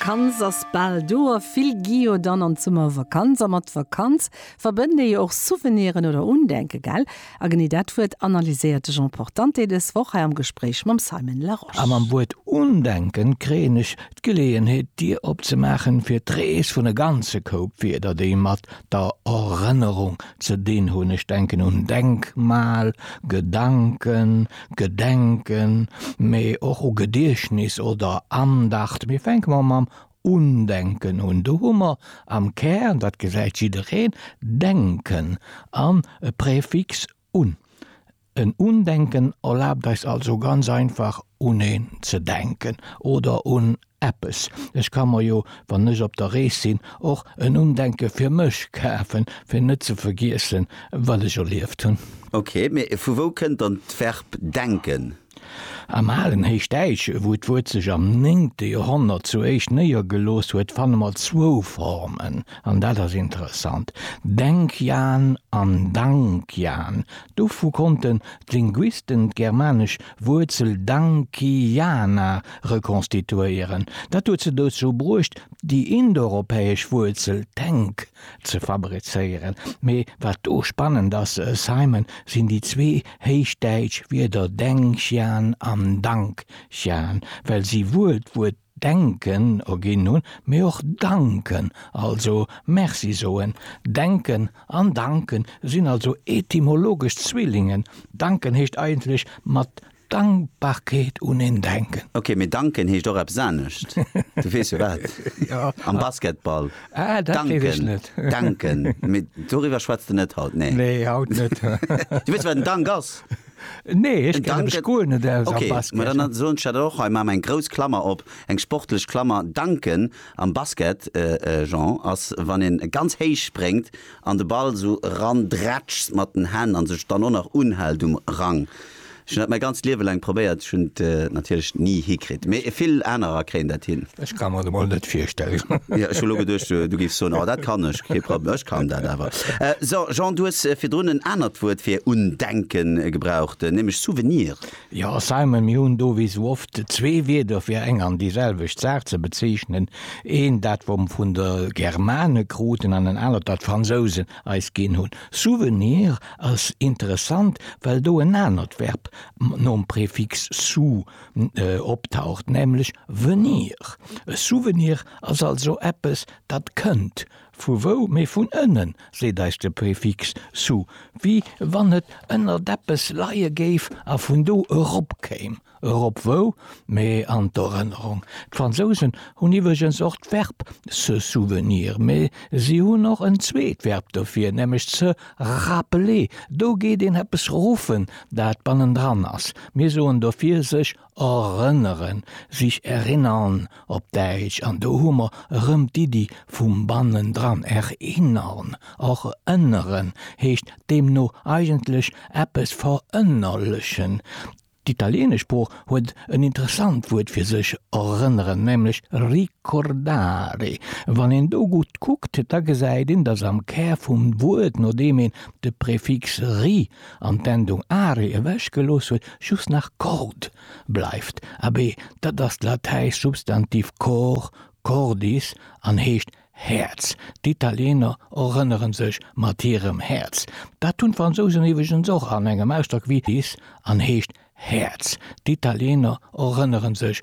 D'Vakanz ass bal do a vill gi jo dann an d'Summervakanz. A mat Vakanz verbënnt ee jo och Souveniren oder Undenken, gell? A genee dat Wuert analyséiert de Jean Portante dës Woch hei am Gespréich mam Simon Larosche. A mam Wuert Undenken kréien ech d'Geleeënheet, d'Dier opzemaachen fir d'Rees vun e ganze Koup Wierder, déi mat der Erënnerung ze dinn hunn. Ech denken un Denkmal, Gedanken, Gedenken, mee och u Gediechtnis oder Andacht. Mee fänke mer mam Undenken un. Do hu mer am Kär, dat gesäit jiddereen, denken an e Präfix un. En Undenken erlaabt eis also ganz einfach un een ze denken oder un Eppes. Ech ka mer jo, wann ech op der Rees sinn, och en Undenke fir mech kafen, fir net ze vergiessen, wat ech erlieft hunn. Ok, mee vu wou kënnt dann d'Verb denken? Am alen Héichdäitsch, wou d'Wuert sech am néngte Joerhonnert zu Eech néiergelooss huet, fanne mer zwou Formen, an dat ass interessant, denkjan an dankjan. Dovu konnten d'Linguisten d'germanesch Wuerzel dankiana rekonstituéieren. Dat huet se dozou bruecht, déi indoeuropäesch Wuerzel Tenk ze fabrizéieren. Mee wat do spannend ass, Simon, sinn déi zwee héichdäitsch Wierder Dengxian an Dangxian, well si wuel d'Wuert denken erginn hunn, mee och danken, also Merci soen. Denken an danken sinn also etymologesch Zwillingen. Danken heescht eigentlech mat Dankbarkeet un een denken. Ok, mee danken heescht och eppes anescht. Du weess jo wat? Jo. Am Basketball. Ah, dat weess ech net. Danken, danken. Mee doriwwer schwätz de net haut, nee? Nee, haut net. Du weess wat en Dank ass? Nee, ech kenn mech guer net aus am Basket. Ok, ma dann soen ech dat och hei, maache mer eng grouss Klammer op, eng sportlech Klammer. Danken am Basket, Jean, ass wann een ganz héich spréngt an de Ball esou erandrätschst mat den Hänn an sech dann och nach unhält um Rang. Ech hunn dat mäi ganzt Liewe laang probéiert, ech hunn et natierlech ni hikritt, mee vill anerer kréien dat hin. Ech ka mer et emol net virstellen. Jo, ech hu lo geduecht, du géifs soen, oh dat kann ech, kee Problem, ech kann dat awer. So, Jean, du hues virdrun en anert Wuert fir undenken gebraucht, nämlech Souvenir. Jo, Simon, mir hunn do wéi sou oft zwee Wierder fir eng an déi selwecht Saach ze bezeechnen, eent dat, wat mer vun de Germane kruten, an en anert, dat d'Fransousen eis ginn hunn. Souvenir ass interessant, well do en anert Verb nom Prefix sou optaucht, nämlech venir. E Souvenir ass also eppes, dat kënnt. Vu wou? Mee vun ënnen, seet eis de Prefix sou, wéi wann et ënnert eppes leie géif a vun do eropkéim. Erop wou, mee an d'Erënnerung. D'Fransousen hunn iwwregens och d'Verb se souvenir, mee si hunn och en zweet Verb dofir, nämlech se rappeler. Do geet een eppes ruffen, dat bannendran ass. Mir soen dofir sech erënneren, sich erinnern op Däitsch, an do hu mer erëm d'Iddi vum bannendran. Erinnern, erënneren, heescht deemno eigentlech eppes verënnerlechen. D'italieenesch Sprooch huet en interessant Wuert fir sech erënneren, nämlech ricordare. Wann een do gutt kuckt, da gesäit een, datt am Kär vum Wuert, nodeem een de Prefix ri an d'Endung are ewechgelooss huet, just nach cord bleift. Abee, dat ass d'latäischt Substantiv cor, cordis, an heescht Häerz. D'Italiener erënneren sech mat hirem Häerz. Dat hunn d'Fransousen iwweregens och an engem Ausdrock wéi dis an heescht Häerz. D'Italiener erënneren sech.